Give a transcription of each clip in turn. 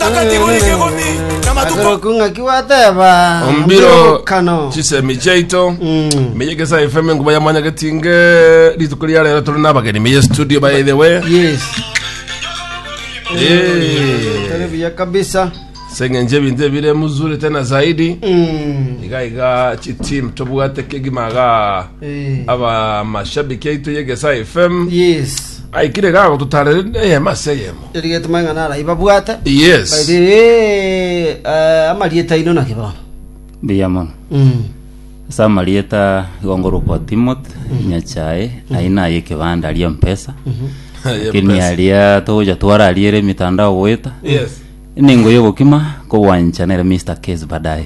Takatifu ni kigumi na matuko. Aseroku ng'aki gwateba ombiro kano chisemi chiaito Mm. meye gesa fm nguba yamanya getinge rituko ria rero tore nabageni meye studio by the way yes Eh. tore buya kabisa seng'enje ebinto ebire muzuri tena zaidi Mm. iga iga chitim tobwate kegimaga Eh. aba mashabiki aito yegesa fm yes aikire gago tutarere eyemo ase eyemo Erigetoma ng'a naribabwate. Yes. Baire, "Eh, eh, amarieta aino naki bono? Mbuya mono. Mm. Ase amarieta igo ngorokwa Timothy Nyachae, aye naye ekebanda aria mpesa. Lakini aria togocha twarariere emitandao goeta. Yes. Ningo yogokima kogwancha nere Mr. Case baadaye.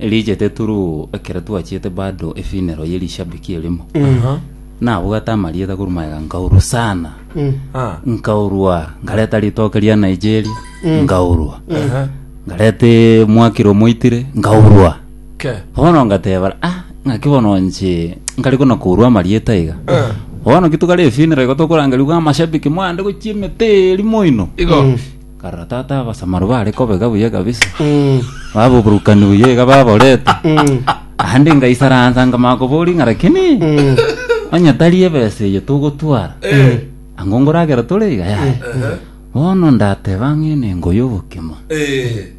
Riichete turuu ekero twachiete bado efinero ye rishabiki erimo. Nabwate amarieta korwa magega nkaurwa sana. Ah. Nkaurwa nkareta ritoke ria Nigeria nkaurwa. Nkarete mwakiro moitire nkaurwa. Ke. Bono ngateba ah ng'aki bono nche nkari kona kourwa amarieta iga. Bono kitukare efinero igo tokorangeriwa amashabiki mwande gochia emete eri moino. Igo. Karora tata abasamaru bare kobega buya kabisa babuburukani buya iga baborete naende ngaisaransa nkamanya koboria ng'a lakini onye tari ebesa eye togotwara ang'o ngoragera tore iga yaya bono ndateba ng'a enengo y'obokima Eh.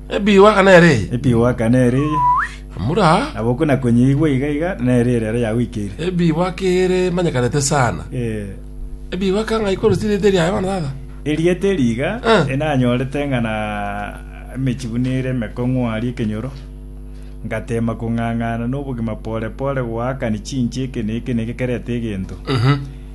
Ebiwaka nere eye. Ebiwaka nere eye. Amura. Nabo okwo na konyeigwa iga iga nere ere aro yagoikeire. Ebiwaka ere manyekanete sana. Eh. Ebiwaka ng'a ikoro sirite ria Yohana tata. Erieta eri iga enanyorete ng'a na emechi buna ere emekong'u aria ekenyoro, ngateema kong'ang'ana nobogima pore pore goakani chinche eke na eke na eke kerete egento.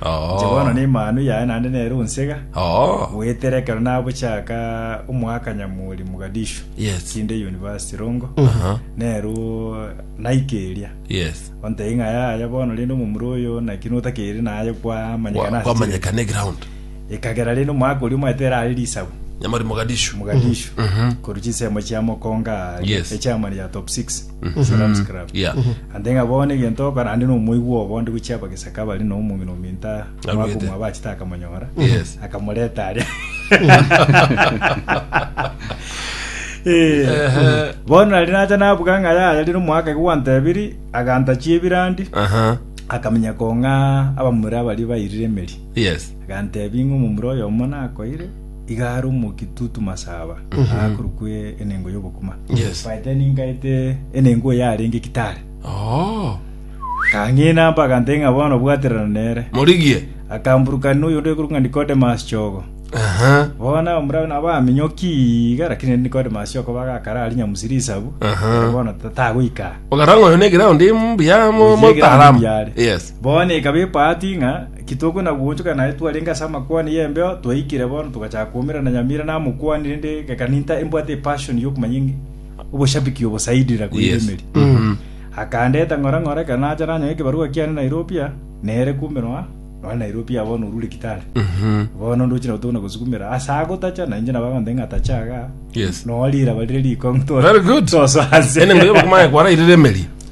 Inche bono Oo. nemanu yaye naende nere onsega Oo. goetera ekero nabochaka omwaka nyamuri Mogadishu Yes. kinde university rongo Aha. nero naika eria Yes. ontei ng'a yaya bono rende omomura oyo naki notakeri naye kwamanyekana Kwa- ase Kwamanyekana eground. chire. ekagera rende omwaka oria omanyete erare risabu Nyamari Mogadishu. Mogadishu Mhm. koru chisemo chia mokonga Yes. echamani ya top 6 Salam scrub. Yeah. Ande ng'a bono egento okora ande nomoigwa obo onde gochia abagesaka bare na omong'ina ominto Arwete. mwakumwa bachete akamonyora Yes. akamoreta aria Eh, bono nari nacha nabuga ng'a yaya rire omwaka iga gwantebiri agantachia ebirandi Aha. akamenya kong'a abamura abari bairire emeri Yes. Aganteebia, Ing'we omomura oyomo nakoire iga are omokia tutu masaba, agakorokwa e- enengo y'obokima. Yes. Baete ningaete enengo oyo arenge gitare. Oh. Kang'ina mba agantee ng'a bono bwaterana nere. Morigie. Akamburukana noyo onde okorokwa ng'a Nicodemus Chogo. Aha. Bono omura nabo aminyoki iga, lakini ere Nicodemus Chogo bagakara ari nyamusi risabu. Aha. Bono ta- tagoika. Okaranga oyo ne ground mbuya mo mo Oyigira taalamu. mbuya are. Yes. Bono ekaba ebahati ng'a kitogwe na goonchoka naye twarenge ase amakwana y'embeo, twaikire bono togachaka koumerana nyamira na amokwani, rende gakaninta embwate epashoni y'okomanya eng'e- oboshabiki obo zaidi na koirwa Yes. emeri. Akandeta ng'ora ng'ora ekero nacha nanyora ekebarua kiane Nairobi aa, nere kumbe noa noa Nairobi aa bono orure Kitale. Bono ndoche nabo tokona gosukumera ase agotacha na inche nabo agonteba ng'a tacha iga Yes. noa riraba rire riko Very good. tosoase Ene ngoyo bakumanya kwarairire emeri.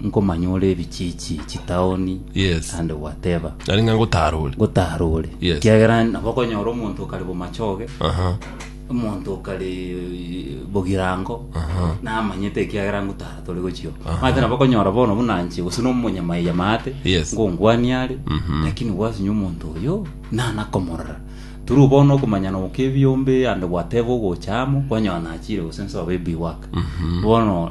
nkomanya ore ebichiichi, chitaoni, Yes. naende gwateba Nari ng'a ngotarore. ngotaara ore Yes. kiagera nabo okonyora omonto okare bomachoge Aha. omonto okare bogirango Aha. namanyete ekiagera ngotaara tore gochio mate nabo okonyora bono buna nche gose nomonyamaiya maate Yes. ngongwania are Mhm. lakini gwasinya omonto oyo nanakomorora turu bono okomanyana okebiombe ande gwateba ogocha amo kwanyora nachire gose nsobe ebiwaka bono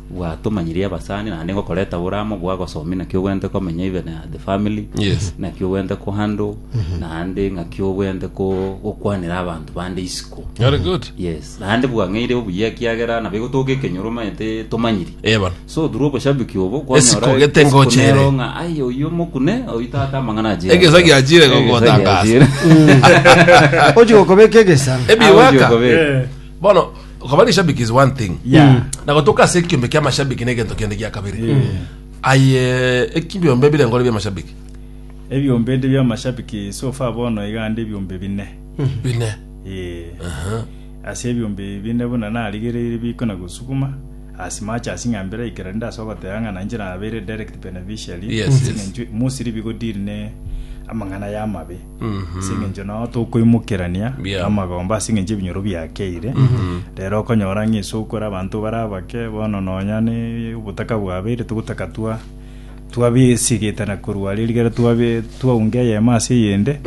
Bwatomanyirie abasani naende ngokoreta oboramo bwa gosomi naki obwenerete komenya even uh, the family Yes. naki obwenerete ko handle naende ng'aki obwenerete ko gokwanera abanto bande isiko Very good. yes naende bwang'eire obuya ekiagera nabo egotoka ekenyoro omanyete tomanyiri Eh, bana. so through oboshabiki obo Esiko gete ngochere. ng'a ai oyu omokune oyu tata amang'ana achire Egesa giachire gogotangaza. ochi gokobeka egesa Ebiwaka. Ojiokobeka. Eh. Bono Okaba rishabiki is one thing. Yeah. Na gotoka ase ekiombe kia mashabiki na egento kende gia kabere. Aye ekiombe bire ngore bia mashabiki. Ebiombe ndi bia mashabiki so far bono iga ndi ebiombe bine. Bine. Eh. Aha. Ase ebiombe bine buna narigereire biko na gosukuma as much as ng'a mbere ikera ndi ase ogoteba ng'a nainche nabeire direct beneficiary. Yes, yes. Mostly bigo deal ne amang'ana y'amabe. ase eng'encho nao tokoimokerania Yeah. amagomba ase eng'encho ebinyoro biakeire rero okonyora ng'a ase okora abanto bare abake bono nonya ne obotaka bwabeire togotaka twa twabiesigetana korwa are rigere twabe twaunga eyemo ase eyende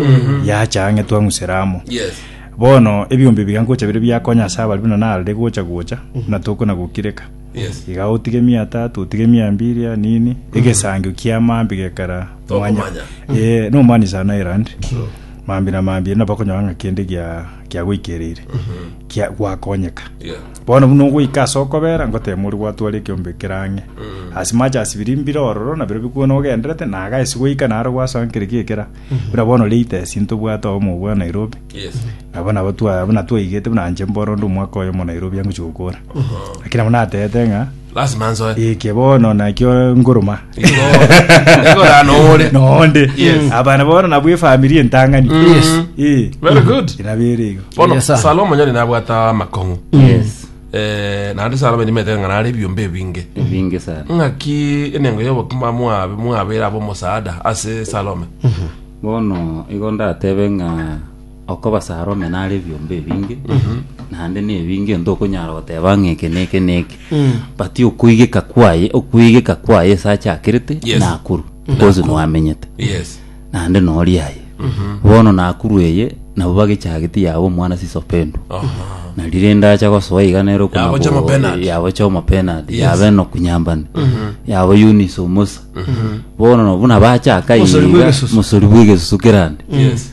yacha ang'e twang'usera amo Yes. bono ebiombe ebiga ngocha bire biakonya ase abari buna narire gocha gocha buna tokona gokireka Yes. iga otige emiatato otige emiambiria nini egesangio kiamambe gekara Tokomanya. Eh, no mani sana Ireland. Mambi na mambi na bakonyora nga kende gia kia goikerire. Kia gwakonyeka. Yeah. Bono buna ogoika ase okobera ngotema ori gwatwara ekiombe kerang'e. Ase mache asibiri mbire ororo na biro bikwo nogenderete na aga esi goika naro gwasankire kiekera. Buna bono latest ntobwate omo bwa Nairobi. Yes. Nabo nabo twa buna twaigete buna nche mboro ndi omwaka oyo mo Nairobi angochi gokora. Lakini nabo natete ng'a Lasima nsoe. Eke bono nakio nguruma. Ekora noore. Noonde. Yes. Abana bono nabwo efamiri entang'ani. Yes. Eh. Very good. Inabere igo. Bono Yes, sir. Salomo nyari nabwata amakong'u. Yes. Eh, naende Salomo nimete ng'a nare ebiombe ebinge. Ebinge sana. Ng'aki enengo y'obokima mwabe mwabera abo omosaada ase Salome. Bono igo ndatebe ng'a Okobasara ome nare ebiombe ebinge, naende na ebinge onto okonyara goteba ng'a eke na eke na eke. But okoigeka kwaye, okoigeka kwaye ase achakerete, Yes. nakuru, because nwamenyete. Yes. Naende nori aye. Bono nakuru eye, nabo bagechageti yaba omwana siso pendwa. Aha. na rire ndacha gosoa iga nero kuna Yabocha bo- amapenalty. yabocha amapenalty Yes. yabe no kunyambani yabo Eunice omosa bono no buna bachaka Mosori bwa iga egesusu. mosori bwa egesusu kerande Yes.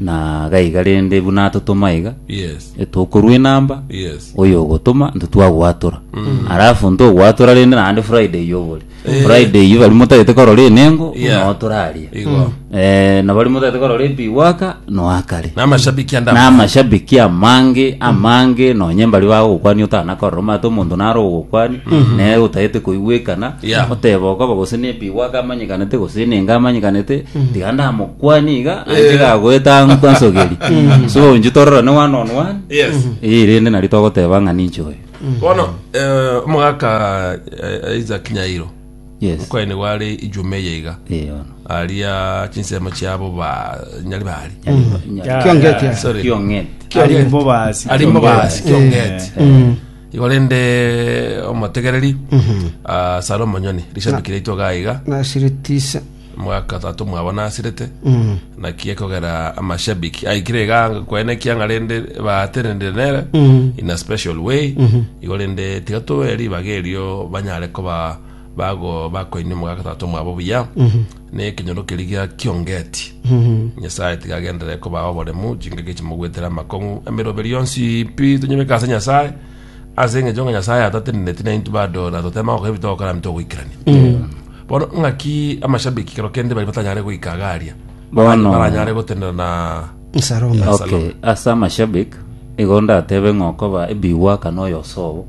na gaiga rende buna atotoma iga Yes. etokorwa enamba Yes. oyo ogotoma nto twagwatora alafu nto ogwatora rende naende friday iyo obore friday iyo bari motagete korora enengo Yeah. notoraria Igo. eh, na bari motagete korora ebiwaka noakare Namashabiki anda. namashabiki amange amange nonye mbari bagokwani otanakorora omate omonto naro ogokwani naye otagete koigwekana Yeah. oteba okoba gose nebiwaka amanyekanete gose enengo amanyekanete tiga ndamo kwani iga anje gagoeta ng'u kwansogeri so onju tororane one on one yes eye rende nari togoteba ng'a ninche oyo bono eh, omogaka eh, isaac nyairo yes mokwane gware ijume eye iga Eh, ono. aria chinsemo chiabo ba nyari bari Kiongeti, yes. Sorry. Kiong'et. Kiong'et. Arimbo basi. Arimbo basi, Kiong'et. Kiong'et. igo rende omotegereri ah, salomo nyoni rishabikire itwe gaiga na siritisa mwaka tato mwabo nasirete Mm. naki ekogera amashabiki aikire iga kwene kianga rende baatenenire nere Mm. in a special way igo rende tiga tobe ribaga erio banyare koba bago bakoini omogaka tato mwabo buya ne ekenyoro keri gia kiongeti Mm. nyasaye tiga agenderere koba oboremu chingaki chimogwetera amakong'u emeroberio yonsi pi tonyebeka ase nyasaye Ase engencho ng'a Nyasaye atateneneti na intwe bado na totema gokora ebi togokora nabo togoikerania. Bono ng'aki amashabiki kero kende bari batanyare goika iga aria. Bono- Baranyare gotenena na Nsaroma. Yes. okay ase amashabik igo ndatebe ng'a okoba ebigwaka na oyo osobo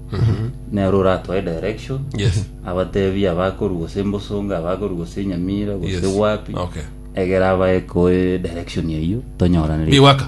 nere oratoe direction Yes. abatebi abakoru gose mbosonga abakoru gose nyamira gose Yes. wapi Okay. egera abae koe direction eyio tonyoraneri Biwaka.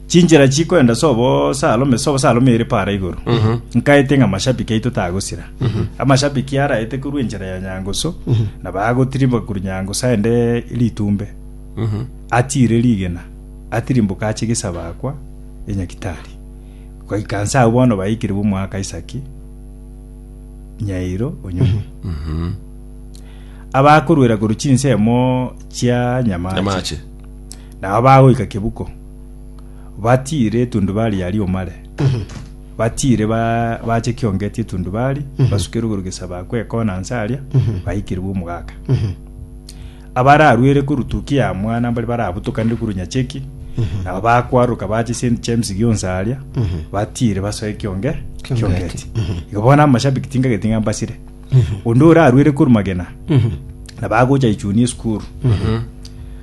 Chinchera chikoenda sobo salome sobo salome ere para igoro. Nkaete ng'a mashabiki aito tagosira. Amashabiki araete korwa enchera ya Nyangusu na bagotirimboka korwa Nyangusu aende Litumbe. Atiire rigena. Atirimboka ache Gesabakwa e Nyakitari. Goika nse agwo bono baikire bw'omwaka Isaki Nyairo Onyonyi. Abakorwera korwa chinsemo chia Nyamache. Nyamache. Nabo bagoika Kebuko. batiire etundubari aria omare batiire ba- bache kiongeti etundubari basukere igoro gesaba kwekona nse aria baikirwe omogaka abararwere korutuki ya mwana mbari barabutokanire korwa nyacheki nabo bakwaruka bache St James gionsi aria batiire basoe kionge kiongeti igo bono amashabiki tingageti ng'a mbasire onde orarwere korwa magena nabagocha ichuni esukuru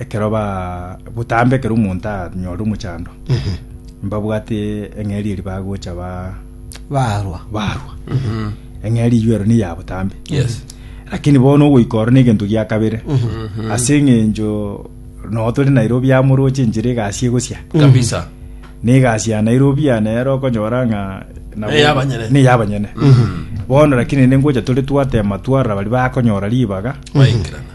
ekero ba botambe ekero omonto anyore omochando mbabwate eng'eri eri bagocha ba barwa barwa eng'eri eyio ero niya botambe Yes. lakini bono ogoika oro negento gia kabere ase eng'encho noo tore nairobi amoroche enchera egasi egosia kabisa negasi ya nairobi ya nero okonyora ng'a nabo- Neyabanyene. neyabanyene bono lakini ningocha tore twatema twarora bari bakonyora ribaga baikirana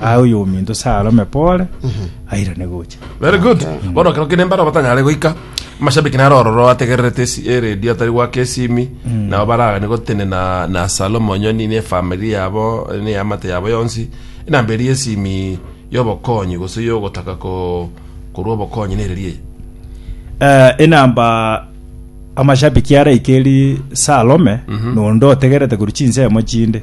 Aye oyominto sarome pore, airane gocha. Very good. Bono kero kende mbaro batanyare goika. Mashabiki naro ororo ategererete esi eredio atari gwaka esimi. Nabo baragane gotene na na Salomo Nyoni ne family yabo ne amate yabo yonsi. Enamba eri esimi yobokonyi gose yogotaka ko korwa obokonyi ne ererie. Eh, enamba amashabiki araike eri sarome nonde otegerete korwa chinsemo chinde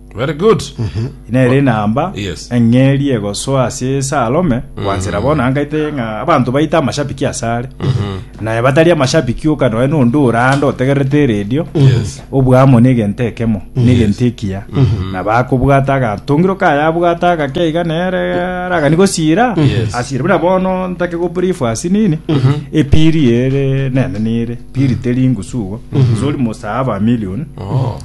Very good. Nere enamba Yes. eng'eri egosoa ase ase arome gwansera bono angaite ng'a abanto baite amashabiki ase are naye batari amashabiki oka noe nonde orande otegerete eredio Yes. obwamo na egento ekemo na egento ekiya na bakobwata agatongiro kaye abwata agake iga nere aragani gosira Yes. asire buna bono ntake go brief ase nini epiri ere nene nere piri teri ngusugo sori mosaaba million Oh.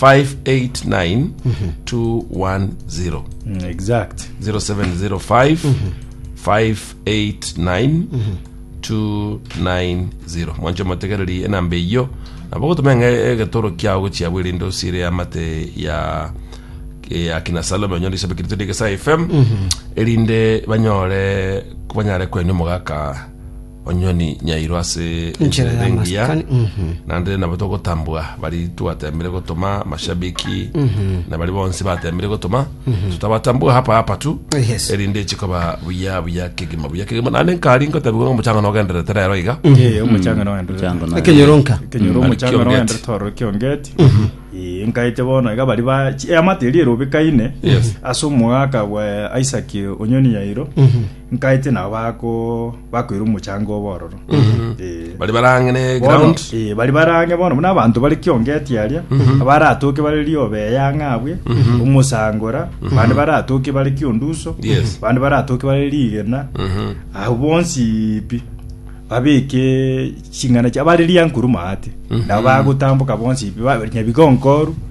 589-210. Mm, exact. 0705-589-290 mwancho mategereri enamba eyiyo nabo gotumenga egetoro kiao gochia bwerinde osire amate ya ya kina salome onyore isabe kirito digesa fm erinde banyore banyare kwenia omogaka Onye ni nyairo ase Enchera enchera ebe engiya y'amasikani, mhm. naende nabo togotambwa bari twatembire gotoma mashabiki na bari bonsi batembire gotoma tutabatambua hapa hapa tu Yes. erinde chikoba buya buya kegima buya kegima naende nkari ngotabigwa ng'a omochanga nogenderete rero iga Eh, omochanga no endere. Chango na- Ekenyoronka. Kenyoro Ari omochanga no kiongeti. endere toro kiongeti. Eh, nkaite bono iga bari ba chi- eh, amateri erobekaine Yes. ase omogaka bwa Isaac Onyoni Yairo. Nkaite nabo bako bakoira omochango obo ororo Eh. bari barang'ene Bono, ground eh, bari barange bono buna abanto bari kiongeti aria abaratoke bare riobe eyanga abwe omosangora bande baratoke bare kionduso Yes. bande baratoke bare rigena abo bonsi pi babeke ching'ana chia bare riankuruma ate nabo bagotamboka bonsi pi ba- nyabigonkoru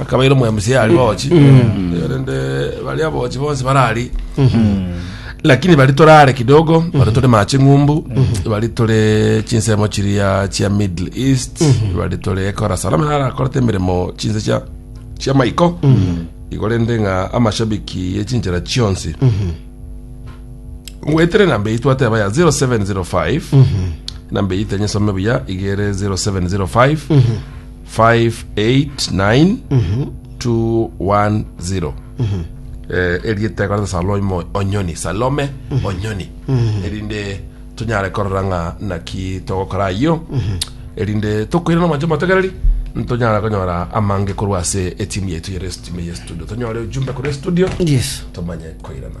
akabaira omwemusi yari bochi rende baria bochi bonsi barari lakini bari torare kidogo bari tore mache ng'umbu bari tore chinsemo chiria chia middle east bari tore ekora salama nara akorete emeremo chinse chia chia maiko igo rende ng'a amashabiki yechinchera chionsi ngwetere namba eyi twateba ya 0705 namba eyi tenyesome buya igere 0705 589-210 Eh, erieta ekoreta salomo onyoni salome onyoni erinde tonyare korora ng'a naki togokora ayio erinde tokoire nomanche motegereri ntonyara konyora amange korwa ase etimu yaitu yere timu ye studio tonyore ujumbe korwa studio Yes. tomanye koirana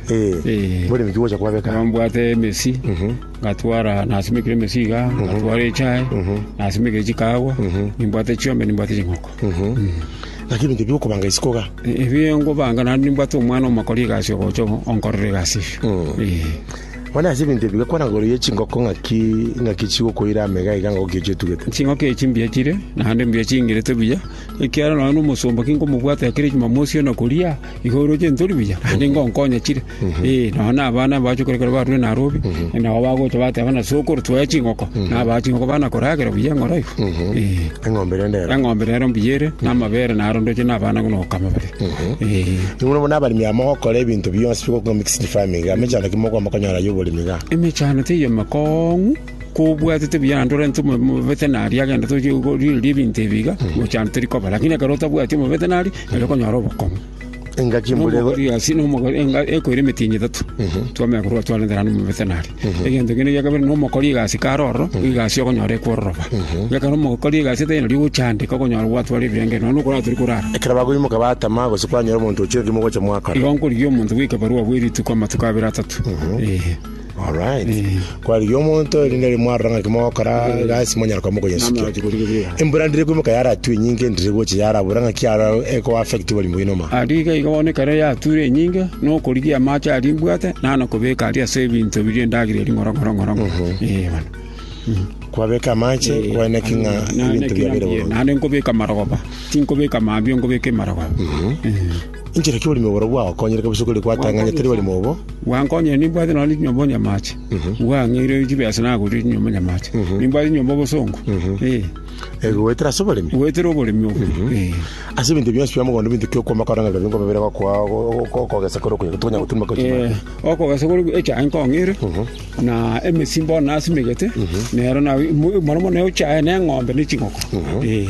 Eh, bore miki gocha kwabeka. Ekero mbwate emesi, ngatwara nasimekire emesi iga, ngatwara echae, nasimekire chikaagwa, nimbwate chiombe, nimbwate ching'oko. Naki ebinto ebi okobanga isiko iga. E- Ebio ngobanga naende nimbwate omwana omokori egasi ogocha onkorera egasi eyio. Eh. Bono ase ebinto ebi gakwana igoro ya chingoko ng'aki ng'aki chigokoira amo iga iga ngoki echi otugete. ching'oke echi mbuya chire naende mbuya chingerete buya ekiagera nonya na omosomba ki nkomobwate ekero echimamosi ona koria Igo oroche ntori buya, naende ngonkonya chire. Eh, nonya na abana bache kore ekero barure Nairobi, nabo bagocha bateba ng'a sokoro twaye chingoko, nabaa chingoko bana koragera buya eng'oro iga. Eh. eng'ombe rende ero Eng'ombe rero mbuya ere, na amabere naro ndoche na abana buna gokama bare. Eh. Nigo bono abaremi aba mogokora ebinto bionsi bigokwa mixed farming iga mechando ki mokoba mokonyora y'oboremi iga Emechando teiyo emekong'u, Kobwatete buya naende orente omobere mobete na aria genda tochie korigereria ebinto ebi iga gocha ande tori koba. Lakini ekero otabwati omobete na aria, nari okonyora obokong'u. Engaki mbore Nomogori gasi nomogori enga- ekoira emetienyi etato twamanya korwa twarente naende omobete na aria. Egento kende gia kabere nomokori egasi kare ororo, egasi okonyora ekwororoba. Ekero omokori egasi etari nari ogocha ande iga okonyora gwatwara ebirengererio nonya okorara tori korara. ekero bakoimoka batama gose kwanyora omonto ochire ki mogocha mwakora. Igo nkorigia omonto goika barua bwe rituko amatuko abere atato. Eeh. Alright. Kwarigia omonto erinde ri mwarora ng'a ki mogokora gasi monyara kwa mokoyesukia. Embura ndire kuimoka yaratue enyinge ndire gocha yarabura ng'a ki ara eko affect oborimo bwino ma. Aria iga iga bono ekero yature enyinge na okorigia amache aria mbwate nana kobeka aria ase ebinto biria ndagire ring'oro ng'oro ng'oro ng'oro. Eh bono. Kwabeka amache kwene ki ng'a ebinto biabere bono. Nane nkobeka marogoba. Tinkobeka mambia nkobeka emarogoba. Eh. Inchera ki oborimo borobwo bwagokonyire kabisa okori gwatang'ania tari oborimo obo? Gwankonyire nimbwate nonya chinyomba onyamache. Gwang'eire chibesa nagoria chinyomba onyamache. Nimbwate chinyomba obosongo. Eh. Eh, goetera ase oboremi. Goetera oboremi obo. Eh. Ase ebinto bionsi bia mogondo binto ki okwama koranga rero ningo babere gokoa okogesa kore okonya tonya gotumba Eh, kochima. okogesa kore echae nkong'eire na emesimba ona nasimegete nero na mono mono echae na eng'ombe na chingoko. Eh.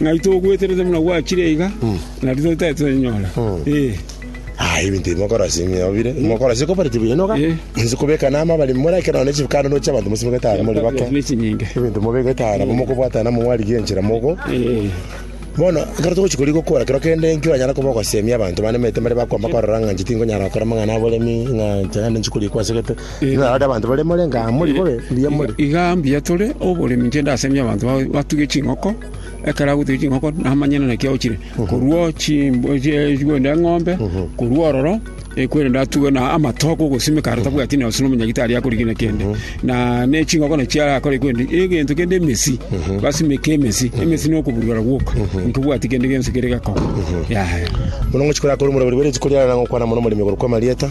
Ng'ai togweterete buna gwachire iga, na rirorio tari torenyora. Ee. Aye ebinto ebi mokorasi ng'eobire mokorasi kobareti buya noga Eh. inse kobeka nama bari more ekero none chibukano noche abanto mosimegete ara more bake Ne chinyinge. ebinto mobegete ara nabo mokobwata namo mwarigia enchera mogo Ee. bono ekero togochi kori gokora kero kende nkio anyara koba ogosemia abanto banemete mbare bakwama korora ng'a inche tinkonyara gokora amang'ana aboremi ng'a inche naende nchikori ekwasegete Inarore abanto bare more nga amo ribobe mbuya more. Iga mbuya tore oboremi nche ndasemie abanto ba- batuge ching'oko ekero agotuga ching'oko namanyana naki agochire korwa chimb- chie- chikorende eng'ombe korwa ororo ekwerende atuge na amatoke ogosimeka aro tabwati nonye gose omonyagito aria akorigina kende na ne ching'oko nachi arakore kwendi egento kende emesi basimeke emesi emesi na okoburugera gwoka nkobwati kende gionsi kere gekogwa yaya Bono ngochia korakora omorembe ribobe riaye chikoriarana gokwana mono omorembe igoro kw'amarieta.